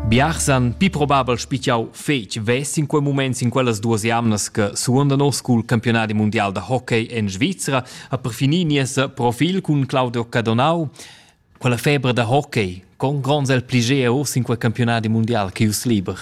Biars han pi probabel spichau fetg vess in quei moment sin quellas duas jamnas che suonda nos cul campionadi mundial da hockey en Svizra ha perfini nies profil cun Claudio Cadonau. Quella febra da hockey con gronds el pligea uss in quei campionadi mundial che us liber.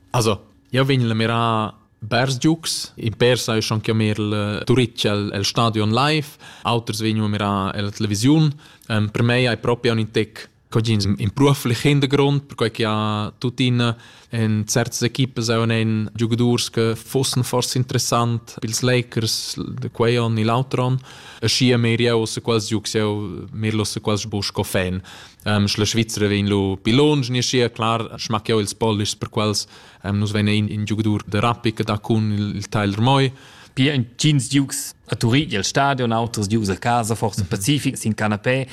Also, io vegn la mirar Bers giucs, in per sai schon chiamar il Turitg el, el stadion live, auters vegnu a mirar la televisiun. Um, per me hai proprio un tec Cogins imprua flichend grond, perquai che ha tuttina en certas equipas auch einen Giocadors che fossen forse interessant pils Lakers, de quei on e l'altro on. E schi a mir jau se quals giucs jau mirlo se quals bu sco fan. Um, la Svizzera vegn lu pi longe, ni schi clar, schmack jau ils polish per quals um, nus vegn in, in giocador de Rappi che da cun il, il Tyler Moy. Pia entgins giucs a Turin, il stadion, auters giucs a casa, forse mhm. Pacific, sin canapé.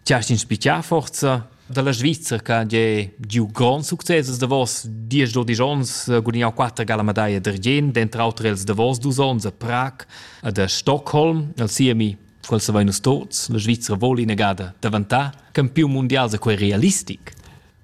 Ti hast inspichà forza dalla Svizra che è giu grond success da vos diesch dodisch onns eh, gudignau quatter gala medaglia d'argient, dentro auter els da vos dus onns a Prag ed a Stockholm, al siemi quel sa vein nus tots, la Svizra voli negada daventà campiun mundial se quei realistic.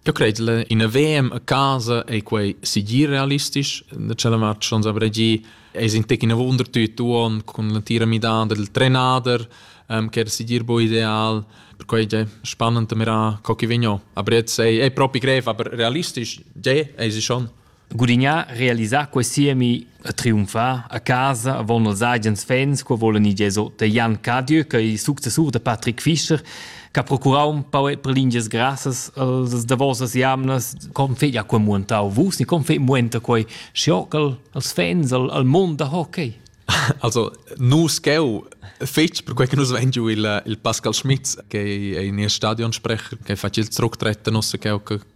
Eu cret la ina VM a casa ei quei segir realistisch da tschella match schon savrei gi es in tec ina wunder tüt uon cun la tira midada del trenader ähm, che era segir bo ideal per quei ge spannend mira co chi vegno aber jetzt sei ei propi grev aber realistisch ge ei sie schon Gudignà realisà quei siemi a triumfar a casa avon els agens fans co volen i geso da Jan Cadieux che successur da Patrick Fischer che ha procurau un pau per lingias grassas als davosas jamnas com fe ja quei muentau vus ni com fe muenta quei schiocal als fans al, al mond da hockey Also, nus cheu fetg per quei che nus vein giu il, il Pascal Schmitz, che è in stadionsprecher, che fa il tructret da nossa cheu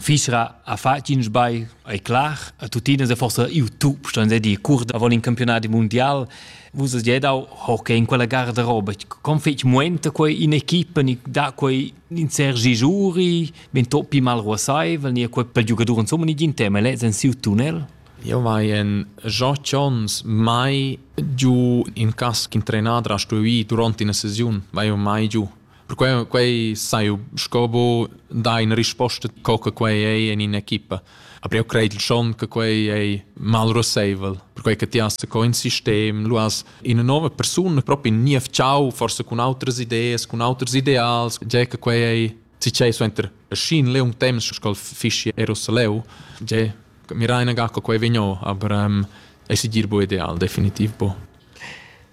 Fisra ha fatg in sbagl, è clar, e tuttina è forse il top, sto dir, cur da vol in campionat mondial. Vus has dau hockey in quella garderoba. Con fetg muenta quei in equipa ni da quei in Sergi Giuri, ben toppi mal ruasaivel, ni quei per giugadur insomma ni gin tema, lez en siu tunnel? Io mai en Jean Chons mai giu in cas ch'in trenader ha stuì durant ina sesiun, vai io mai giu. Perquei quei sai sco bu da in risposta co che quei ei in in equipa. Aber io credo schon che quei ei mal roseivel, perquei che ti hast co in sistem, lu hast una nuova persona proprio nie ciao forse con altre idee, con altri ideals, già che quei ei si c'è suenter scin le un temps scol fisci Erosaleu, già mi raina ga che quei vegno, aber ähm, es dir bu ideal definitiv bu.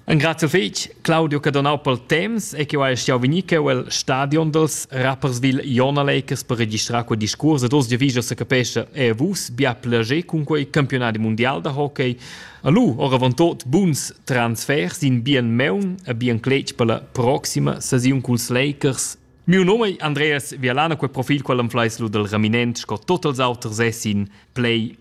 Ringrazio fetg Claudio che donau pel temps e che ho stau vegnir cheu el stadion dels Rapperswil Jona Lakers per registrar quel discurs ed oz già vigia se capescha e vus bia plager cun quei campionat mundial da hockey. Allu oravant tot buns transfers in bien meun e bien cletg per la proxima saziun culs Lakers. Miu nome è Andreas Vialana, quel profil qual am fleis lu del Raminent, sco tot els auters essin play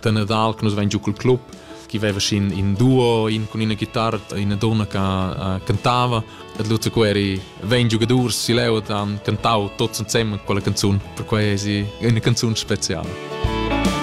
da Nadal che nus vein giu cul club chi veva sin in duo, in con ina chitarra, ina donna che uh, cantava. Et Lutz Queri vegn giugadurs si leu e han cantau tots insem quella canzun, per quei è si una canzun speciale.